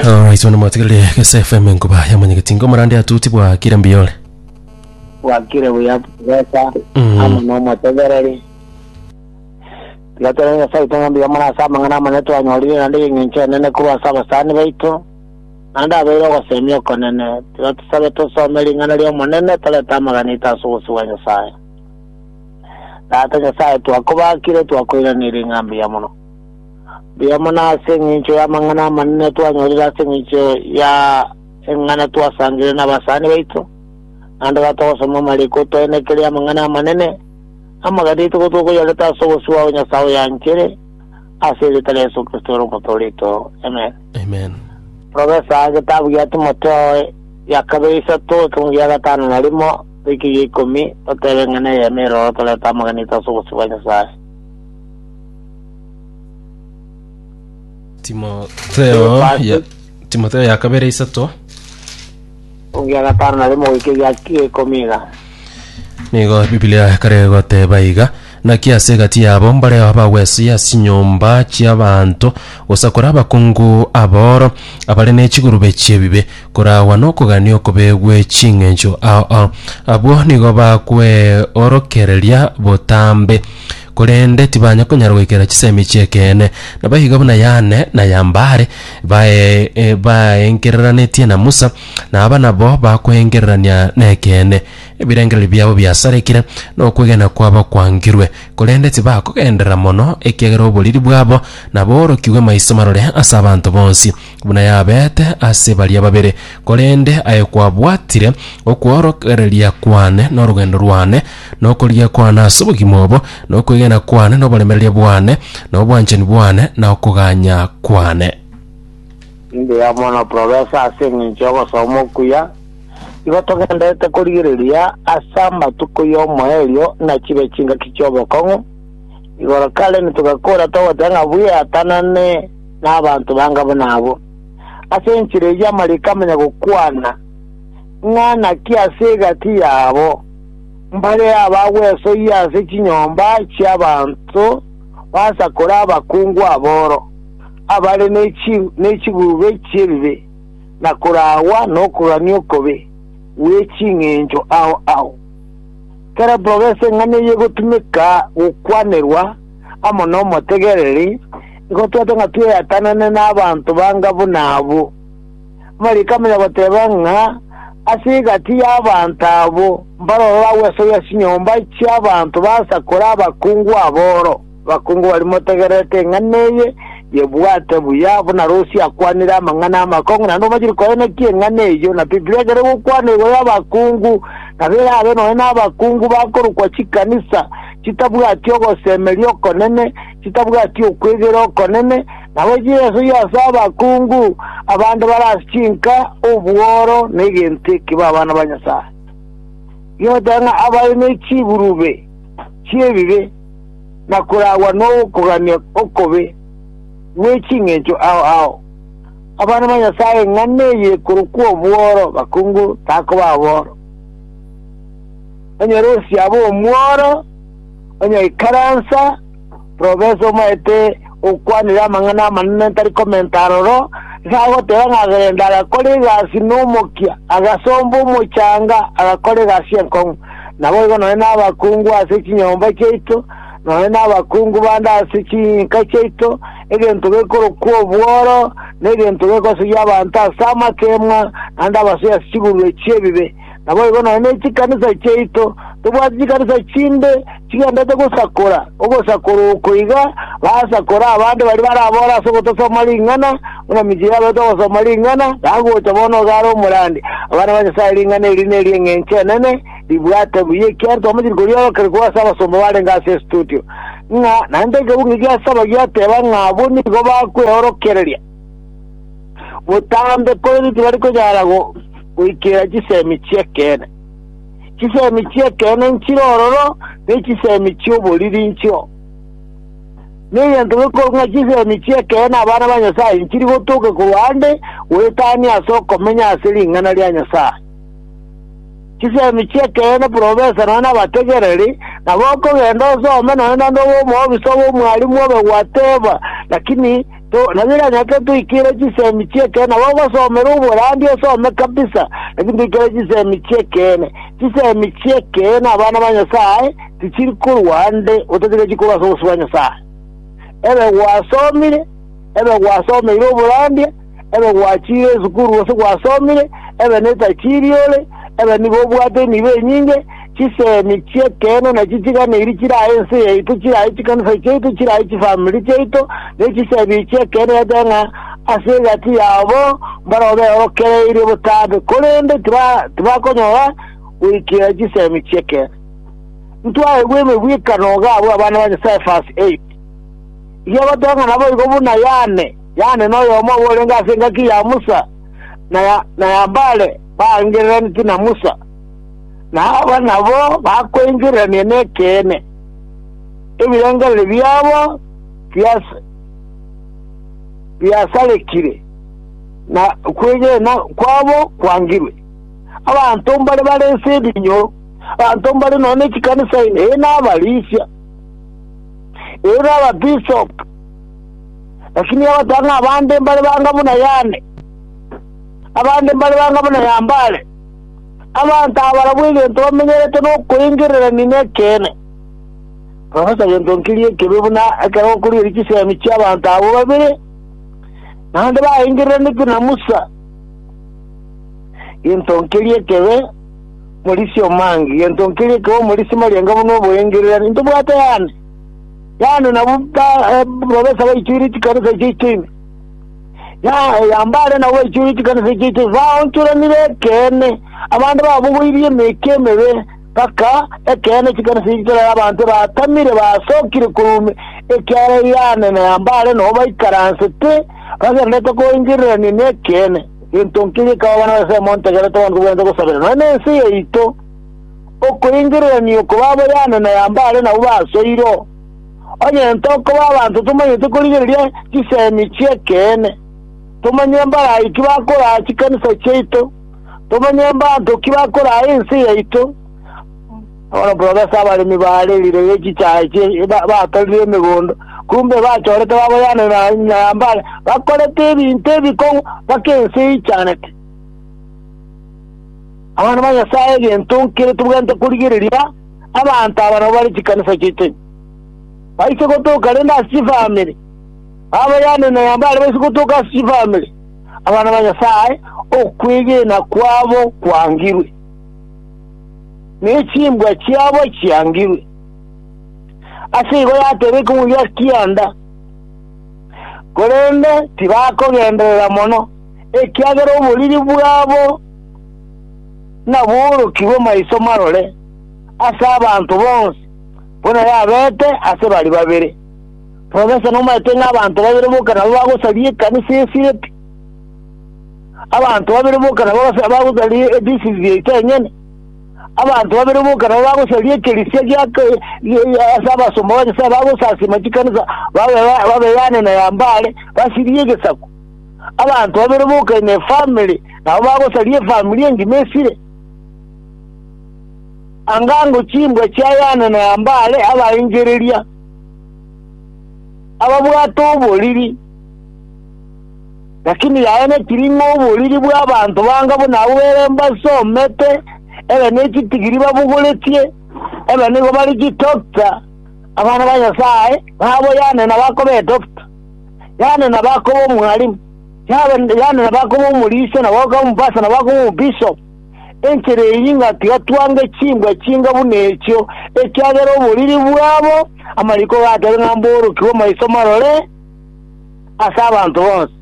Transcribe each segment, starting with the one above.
Alright, wana mwatigarire Gese FM nkuba yamanyegeti ngomorande atuti bwa kira mbiyore. wakire buya besa Mm. amo nomotegereri tigatera nyasaye ito ng'ambi yamona ase amang'ana amane twanyorire naende eng'encho enene korwa ase abasani baito naende abeire ogosemia okonene tiga tosabe tosome ring'ana ri'omonene torete amagana ito ase obosi bwa nyasaye tata nyasaye twakobakire twakoiraneire ng'ambi ya mono Riromo nase engencho y'amang'ana amanene twanyorire ase engencho ya eng'ana twasangereire nabasani baito, naende ekero togosoma amariko toenekerie amang'ana amanene, amagateito ko tokoyareta ase obosio bwabo Nyasae oyanchere, ase erieta ria Yeso Kristo ere Omote oreito. Amen. Amen. Profesa, egetabu gia Timotheo ya kabere isato, ekegungu gia gatano na rimo goika egia ikomi, toteba eng'ana eyemo eroro torete amaganeito ase obosio bwa Nyasae. timotheo ya- timotheo ya kabere isato Ogia gatano na rimo goika egia ikomi iga. nigo bibilia kare goteba iga naki ase egati yabo mbareo abagwesia ase chinyomba chi'abanto gosakora abakungu aboro abare ne chigurube chi'ebibe koragwa nokogania okobe gwe ching'encho ao ao abwo nigo bakweorokereria botambe korende tibanya konyara goikera chisemi chi'ekeene, nabo iga buna Yane na Yambare bae- e, baengereranetie na Musa, na aba nabo bakoengererania nekeene. Ebirengererio biabo biasarekire, na okwegena kwabo kwangirwe, korende tibakogenderera mono, ekiagera oboriri bwabo naboorokigwe maiso marore ase abanto bonsi. buna yabeete ase baria babere, korende aye kwabwatire okworokereria kwane norogendo rwane, na okorigia kwane ase obogima obo, na okwegena kwane na oboremereria bwane, na obwanchani bwane na okoganya kwane. Mbuya mono Profesa ase engencho y'ogosoma okuya. Igo togenderete korigereria ase amatuko y'omoerio na chibe chingaki chi'obokong'u. Igoro Karen togakora togoteba ng'a bweatanane. nabanto banga buna abwo. Ase enchera eyio amariko amanya gokwana, ng'a naki ase egati yabo mbare abagwesoyia ase chinyomba chi'abanto basakore abakungu aboro, abare ne chigurube chi'ebibe, na koragwa nokoganio okobe gwe ching'encho ao ao. Kera progress eng'ana eyio egotumeka gokwanerwa, amo nomotegereri, nigo twete ng'a tweatanane nabanto banga buna abwo. Amariiko amanene agoteeba ng'a ase egati y'abanto abwo mbarororo agwesoyia chinyomba chi'abanto basakore abakungu aboro, abakungu baria motegererete eng'ana eye, yebwate buya buna Rusi akwanire amang'ana amakong'u, naende omachire koenekia eng'ana eyio, na Biblia ekere gokwana igoro y'abakungu, nabo erabe nonya nabakungu bakorokwa chikanisa, chitabwati ogosemeria okonene, chitabwati okwegera okonene, na goika Yeso yase abakungu, abande bare ase chinka, obworo, na egento ekibe abana ba Nyasae. Gigoteba ng'a abare ne chiburube chi'ebibe na koragwa n'okogania okobe gwe ching'encho ao ao. Abana ba Nyasae ng'a neye korokwa obworo, bakungu takoba aboro. Onyoresia abe omworo, onyaikaransa, profesa omaete gokwanera amang'ana amanene tari komenta aroro, iga agoteba ng'a Gerenda agakora egasi nomokia, agasomba omochanga, agakora egasi enkong'u. Naboigo nonye nabakungu ase chinyomba chiaito, nonye nabakungu bande ase chinka chiaito, egento gekorokwa obworo negento gekosoyia abanto ase amakemwa, naende abasoyie ase chigurube chi'ebibe. Naboigo nonya ne chikanisa chiaito, tobwati chikanisa chinde chigenderete gosakora ogosakora oko iga, basakore abande baria barabore ase ogotasoma ring'ana, buna michie yabeete ogosoma ring'ana, nagocha bono iga are omorandi. Abana ba Nyasae ring'ana eri neri'eng'encho enene, ribwate buya ekiagera twamachiri koriorokeria korwa ase abasomba barenge ase estudio, ng'a naende ekeguo ng'ekiasabagia ateba ng'a abwo nigo bakweorokereria. Botambe, korende tibari konyara goikera chisemi chi'ekeene. Chisemi chi'ekeene nchire ororo, ne chisemi chi'oboriri nchio. Negento gekorwa ng'a chisemi chi'ekeene abana ba Nyasae nchiri gotoke korwa ande goetania ase okomenya ase ring'ana ria Nyasae. Chisemi chi'ekeene profesa nonya nabategereri nabo okogenda osome nonya naende obe omoofisa bw'omwalimu obe gwateba, lakini Naki ganyarete toikere chisemi chi'ekeene nabo ogosomera oborandia osome kabisa, naki ntoikere chisemi chi'ekeene. Chisemi chi'ekeene abana ba Nyasae tichiri korwa ande otatiga chikorwa ase obosio bwa Nyasae. Ebe gwasomire, ebe gwasomeire oborandia, ebe gwachiire esukuru gose gwasomire, ebe netachiiri ore, ebe nigo obwate enibo enyinge, Chisemi chi'ekeene nachi chiganeiri chirae ense yaito, chirae chikanisa chiaito, chirae chifamiri chiaito, ne chisemi chi'ekeene yacha ng'a ase egati yabo mbarabwo beorokereirie botambe, korende tibakonyora goikera chisemi chi'ekeene. Ntwaegwe emegwekano iga abwo abana ba Nyasae, verse 8, eria bateba ng'a naboigo buna Yane, Yane noyomo obo orenge ase engaki ya Musa, na Yambare baangereraneti na Musa. na aba nabo bakoengererania nekeene, ebirengererio biabo biasarekire, na okwegena kwabo kwangirwe. Abanto mbare bare ense edinyo, abanto mbare nonya ne chikanisa ime, ee, nabarisia, ee, nababisop, lakini abatang'a abande mbare banga buna Yane, abande mbare banga buna Yambare. Abanto aba barabwo egento bamenyerete nokoengererania nekeene, bagosa gento nkeria ekebe, buna ekero gokorigereria chisemi chi'abanto abwo babere, naende baengereraneti na Musa gento nkeria ekebe, morisia omange gento nkeria ekebe, omorisia marianga buna oboengererani. Ntobwate yane, yane nabwo ba- eh, profesa baichoire chikanisa echo icho ime. Na oyomba are na gwechura chikanisa echio chisaonchoranire ekeene, abande babogoirie emeke emebe, mpaka ekeene chikanisa echio chirore abanto batamire basokire korwa ekiagera Yohane na oyomba are nao baikaransete, bagendererete koengererania nekeene. Gento nki gekaba bana ba Nyasae montegerete abanto bwense gosabera, nonya nense yaito, okoengererania oko babo Yohane na oyomba are nao basoirwe. Onye tokoba abanto tomanyete korigereria chisemi chi'ekeene, tomanye mbarai ki bakoraa chikanisa chiaito, tomanye mbanto ki bakoraa ense yaito, bono buna ase abaremi baarerire chichaya batorire emegondo, kumbe bachorete baboyana na nyambare, bakorete ebinto ebikong'u mpaka ense eichanete. Abana ba Nyasae egento nkere tobwenerete korigereria. Abanto aba nabwo bare chikanisa chi'echeni. Baiche gotoka rende ase chifamiri, babayane na yambo aria baiche gotoka ase chifamiri, abana ba Nyasae, okwegena kwabo kwangirwe, ne chimbwa chiabo chiangirwe. Ase igo yateba ekegwegwa kianda, korende tibakogenderera mono, ekiagera oboriri bwabo naboorokigwe maiso marore. ase abanto bonsi, buna yabete ase baria babere. Profesa nomaete ng'a abanto babere boka nabo bagosaria ekanisa esire pi. Abanto babere boka nabo bagos- bagosaria ediocese yaito enyene. Abanto babere boka nabo bagosaria ekerisia gia ke- gia- gia- ase abasomba ba Nyasae bagosasima chikanisa babe ba- babeyane na ya Mbale, basirie egesaku. Abanto babere boka in a family, nabo bagosaria efamiri engima esire. Anga ng'o chimbwa chiayane na Nambale abaengereria, ababwate oboriri, lakini yaye netiri ng'a oboriri bw'abanto banga buna abwo ere mbasomete, ebe nechitigiri babogoretie, ebe nigo bare chidokta, abana ba Nyasaye nabo yaane nabakoba edokta, yaane nabakoba omwalimu, yaane nabakoba omorisia, nabakoba omopasa, nabakoba omobishopu. Enchera eyio ingatiga twange chimbwa chinga buna echio, ekiagera oboriri bwabo amariko gatari ng'a mborokigwe maiso marore ase abanto bonsi,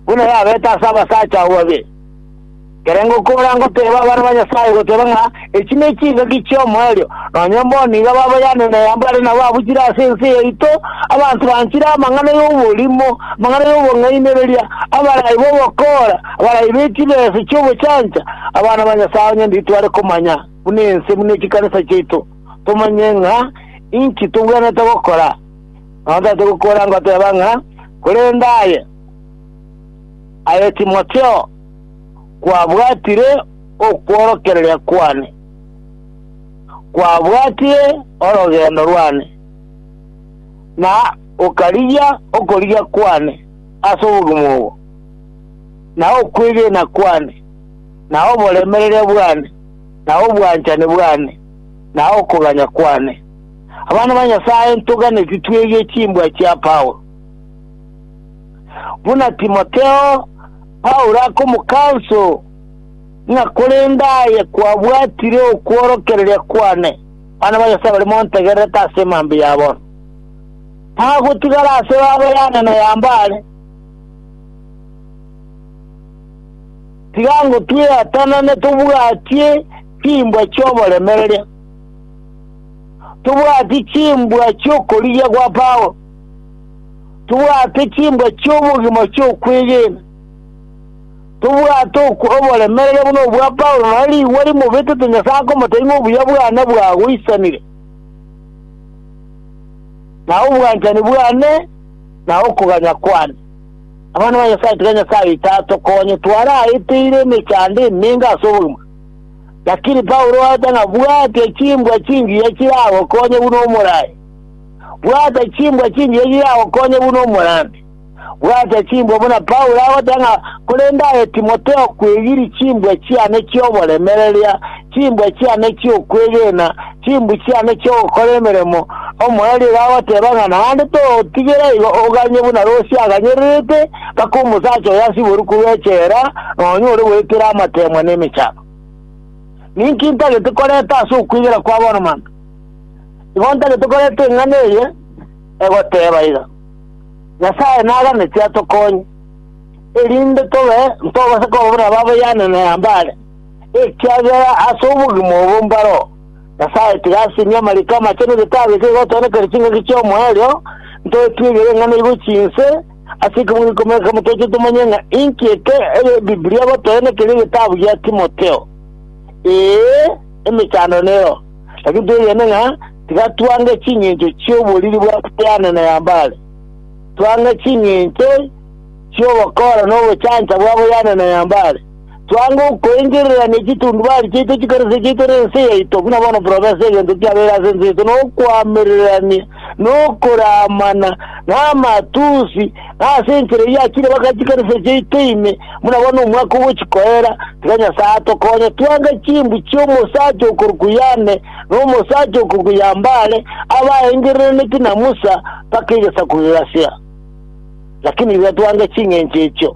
buna yabete ase abasacha abwo babere. Ekero ngokora ngoteeba abana ba Nyasae goteeba ng'a echi ne chingaki chi'omoerio, nonye mbo nigo baboyane na eyambare nabo abuchire ase ense yaito, abanto banchire amang'ana y'oborimo, amang'ana y'obong'ainereria, abarai b'obokoora, Abaraibeti b'ense chi'obochancha, abana ba Nyasae onye nditware komanya buna ense buna chikanisa chiaito, tomanye ng'a inki togwenerete gokora. Nonya tari togokora goteba ng'a korende aye, aye Timotheo, kwabwatire okworokereria kwane, kwabwatire orogendo rwane, na okarigia okorigia kwane ase obogima obo. na okwegena kwane, na oboremereria bwane, na obwanchani bwane, na okoganya kwane. Abana ba Nyasae, ntoganeti twegie chimbwa chia Paulo. Buna Timotheo, Paulo akomokanso ng'a korende aye kwabwatire okworokereria kwane. Abana ba Nyasae barimo ntegererete ase emambia ya bono, tagotigara ase baba yane na ya mbale. Tiga ngo tweatanane tobwatie chimbwa chi'oboremereria. Tobwati chimbwa chi'okorigia gwa Paulo. Tobwate chimbwa chi'obogima chi'okwegena. Tobwate ok- oboremereria buna obwa Paulo, na rigwa rimobetete Nyasae akomotebia ng'a obuya bwane bwagoisanire, na obwanchani bwane na okoganya kwane. Abana ba Nyasae, tiga Nyasae tatokonye twaraeteire emechando emenge ase obogima. Lakini Paulo oete ng'a bwatia chimbwa chingiya chiragokonye buna omoraai. Bwata chimbwa chingiya chiragokonye buna omorambi. Bwata chimbwa buna Paulo agoteba ng'a korende aye Timotheo kwegirie chimbwa chiane chi'oboremereria Chimbwa chiane chi'okwegena, chimbu chiane chi'ogokora emeremo, omoerio agoteeba ng'a naende togotigera igo oganye buna Rosia aganyererete mpaka omosacha oyo asiborwe korwa echela, na onyore goetera amateemwa na emechando. Ninki ntagete korenta ase okwegena kwa bono mambia? Igo ntagete korenta eng'ana eye egoteeba iga, Nyasae naganeti atokonye, erinde tobe ntogoseka obobe na babayaane na Nambale, Ekiagera ase obogima obo mbaro, Nyasae tiga asimie amariko amache na egetaaba ekio kigotoonekania chingaki chi'omoerio, ntoetwegere ng'a naigo chinse ase ekemogo ikomi na kemo toche tomanye ng'a inki eke Ebibilia egotoenekeria egetabu gia Timotheo. Ee, emechando nero, lakini twegene ng'a tiga twange chingencho chi'oboriri bwa Brian na Yambare. Twange chingencho chi'ogokora na obochancha bwa Brian na Yambare. Twango koengerera ne chitundubari chiaito chikarosia chiaito na ense yaito, buna bono profesa egento kiabeire ase ense yaito nokoamererania, nokoramana, na amatusi, na ase enchera eyio achire baka chikarosia chiaito ime, buna bono omwaka ogochi koera, tiga Nyasae atokonye twange chimbu chiomosacha okoruku Yane na omosacha okoruku Yambare abaengerereneti na Musa baka egesaku gegasia. Lakini iga twange ching'encho echio.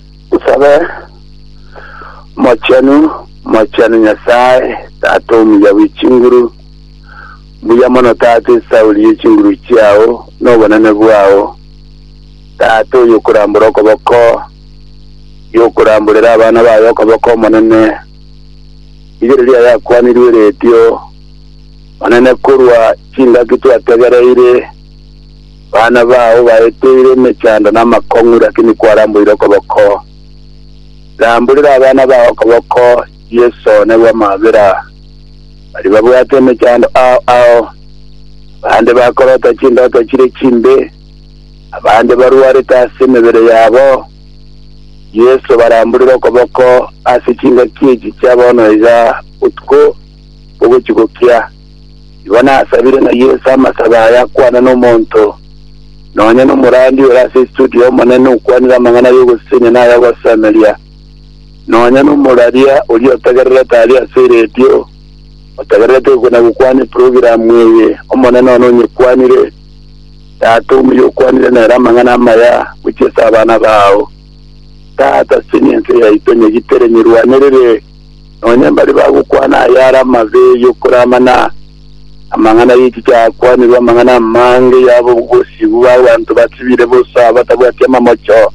Mosabe, Omochenu, omochenu Nyasae, Tata omuya bwe chinguru, mbuya mono Tata esauri ye chinguru chiao, na obonene bwao, Tata oyokorambora okoboko, yokoramborera abana baye okoboko Omonene, rigereria ayakwanirwe eretio, Monene korwa chingaki twategereire, Bana bao baeteire emechando na amakong'u, lakini kwaramboire okoboko. Ramborera abana bao okoboko, Yeso one bw'amabera. Baria babwate emechando ao ao, abande bakorota chindoto chire chimbe, abande barwarete ase emebere yabo. Yeso baramborere okoboko ase chingaki echi chia bono iga botuko bogochia gokia. Igo nasabire na Yeso amasabe aya akwana nomonto, nonya nomorandia ore ase estudio y'Omonene okwanire amang'ana ay'ogosisenya na ay'ogosemeria, nonya nomoraria oria otegererete aria ase eredio, otegererete gokina gokwana eprogramu eye. Omonene one onyekwanire, Tata omuya okwanire nere amang'ana amaya gochia ase abana bao. Tata, sisenia ense yaito, nyegitere, nyerwanerere, Nonya mbaria bagokwana aya are amabe y'okora amana, amang'ana y'echi chakwanirwe amang'ana amange yaba obosigu bw'abanto basibire bosa batabwati amamocho.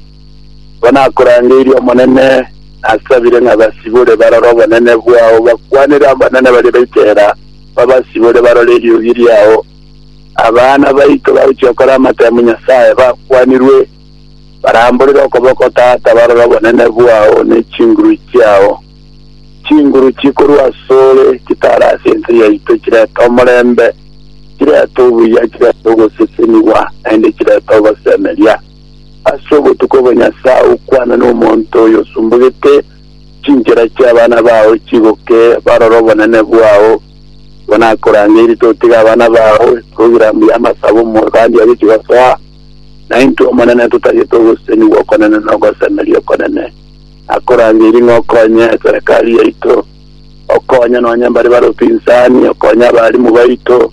Nabo nakorangeirie Omonene, nasabire ng'a basibore barore obonene bwao, bakwanere abanene baria baitera, babasibore barore eriogi riao. Abana baito bagochia gokora amatemu Nyasae bakwanirwe. Baramborere okoboko, Tata, barore obonene bwao ne chinguru chiao, chinguru chikorwa asore, chitaare ase ense yaito, chirete omorembe, chirete obuya, chirete ogosesenigwa, naende chirete ogosemeria. Ase obotuko obo, Nyasae, okwane nomonto oyosumbugete, Chinchera chi'abana bao chigoke, barore obonene bwao. Igo nakorangeirie, totiga abana bao, togira mbuya amasabo, omorwandi agochia gosoa. Na intwe Omonene totagete ogoseseni gw'okonene na ogosemeria okonene, na korangeirie ng'a okonye eserekari yaito, okonye nonya mbare bare opinsani, okonye abaalimu baito,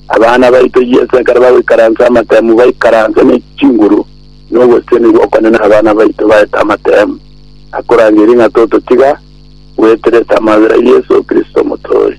abana baito Yeso ekero bagoikaransa amatemu baikaranse ne chinguru, na ogoseseni gw'okonene abana baito baete amatemu, na korangeirie ng'a tototiga gweteresa amabera Yeso Kristo Omotoori.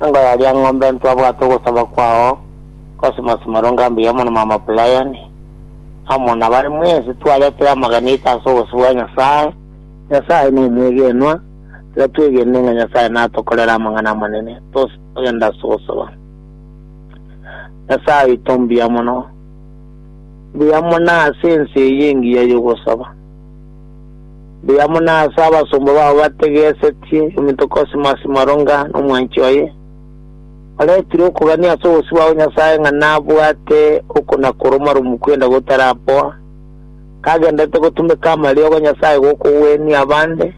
Nkoraria ng'ombe ntwabwate ogosaba kwao Cosmas Marunga mbuya mono mama Brian amo nabare mwensi twaretire amagena aito ase obosio bwa Nyasae. Nyasae nomwegenwa, tiga twegene ng'a Nyasae natokorere amang'ana amanene tose togenda ase ogosaba. Nyasae oito mbuya mono, mbuya mono ase ense eye engiya yogosaba. Mbuya mono ase abasomba bao bategesetie ominto Cosmas Moronga na omwanchi oye, oretire okogania ase obosio bwa Nyasae ng'a nabwate okona-koromaromu kwenda gotarapoa, kagendererete gotumeka amariogo 'Nyasae gokogwenia abande,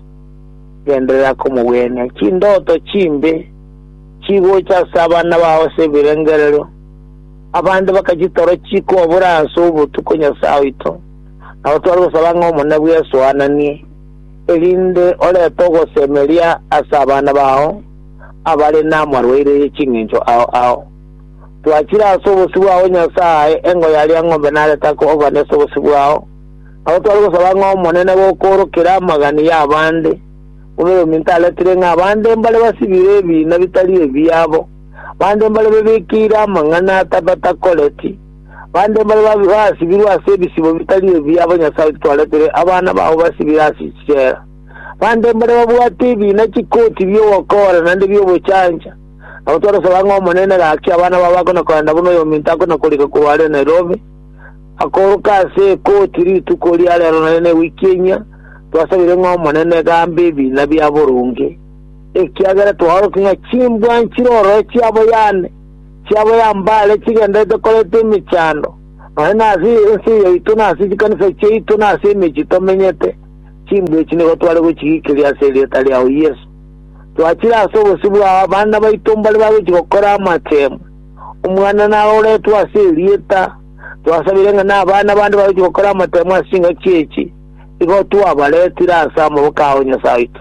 genderera komogwenia. Chindoto chimbe chigocha ase abana bao ase ebirengererio, abande bakachitoro chikobora ase obotuko Nyasae oito, Nabo tware gosaba ng'a Omonene bw'esoananie, erinde orete ogosemeria ase abana bao abare namarwaire ye chingencho ao ao. Twachire ase obosio bwao Nyasae, engo ya riang'ombe narete ake obani ase obosio bwao. Nabo tware gosaba ng'a Omonene gokoorokere amagani y'abande, buna Orominto aretire ng'a abande mbare basibire ebiina bitari ebiabo, bande mbare bebekeire amang'ana atabakoreti. Bande mbare basibirwe ase ebisibo bitari ebi abo Nyasae otitwaretire abana babo basibire ase chichela. Bande mbare babwate ebiina chikoti bi'ogokora naende bi'obochancha, na gotwaresa bang'e ng'a Omonene gaki abana babo bakona korenda buna oyominto akona korika korwa are Nairobi, akoroka ase ekoti rituko ria rero naende ne wiki enyia, twasabire ng'a Omonene gambe ebiina bia boronge, ekiagera twaorokia ng'a chimbwa nchire ororo chiabo yane. chiabo ya mbare chigenderete koreta emechando, nonya nase ense yaito na ase chikanisa chiaito na ase emechie tomenyete, chimbwa echi nigo tware gochigiikeria ase erieta riao Yeso. Twachire ase obosio bwao abana baito mbare bagochia gokora amachenu, omwana naroretwe ase erieta, twasabire ng'a na abana bande bagochia gokora amatemu ase chingaki echi, igo twabaretire ase amaboko ao Nyasae oito.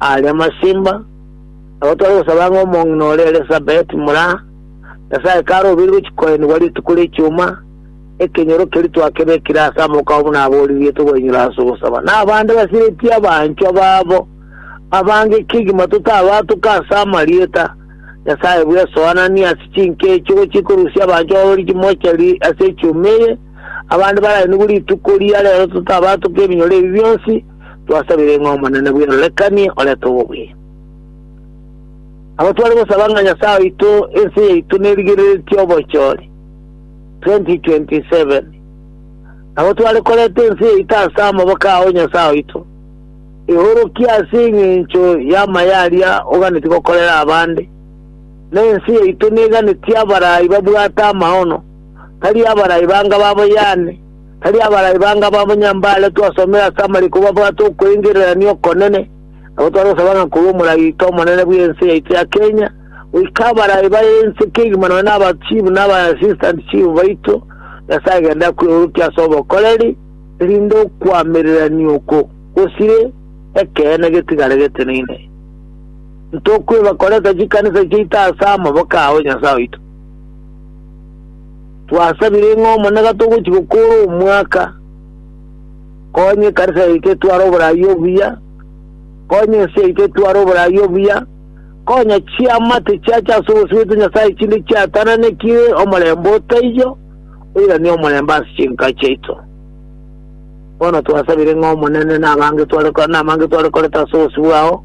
Aare amasimba, nabo tore gosaba ng'a omong'ina oria Elisabeti mura Nyasae kare obirirwe chikoenigwa rituko ri'ekioma, ekenyoro keria twakebekire ase amokao buna abooririetwe koinyora ase ogosaba, na abande basiretie abanchwa babo abange kegima totabatuka ase amarieta Nyasae bw'esoananie ase chinka echi ogochia ikorusia abanchwa babo richimochari ase echioma eye, abande barainigwe rituko ria reero totabatuka ebinyoro ebi bionsi, twasabire ng'a Omonene bw'erorekanie orete obobui. Nabo tware gosaba ng'a Nyasae oito ense yaito nerigereretie obochori 2027. Nabo tware koreta ense yaito ase amaboko ao Nyasae oito, eorokie ase engencho y'amaya aria oganetie gokorera abande, na ense yaito neganetie abarai babwate amaono, tari abarai banga ba boyane, Tari abarai bange ababo nyambare twasomere ase amariko babwate okweingererania okonene, nabo twarosaba ng'a korwa omoragite omonene bw'ense yaito ya Kenya goika abarai baye ense kegima nonya na abachifu na aba assistant chief baito, Nyasae gende akweorokie ase obokoreri, erinde okoamererania oko gosire ekeene getigare geteneine. Ntokweba koreta chikanisa chiaito ase amaboko ao, Nyasae oito. Twasabire ng'a Omonene gatogochia gokoora omwaka, konya ekanisa yaito etware oborai obuya, konya ense yaito etware oborai obuya, konya chiama tichiache ase obosio bwaito Nyasae chinde chiatananekire omorembe otaiyo, oiranie omorembe ase chinka chiaito. Bono twasabire ng'a Omonene nabange tware ko- namange tware koreta ase obosio bwao,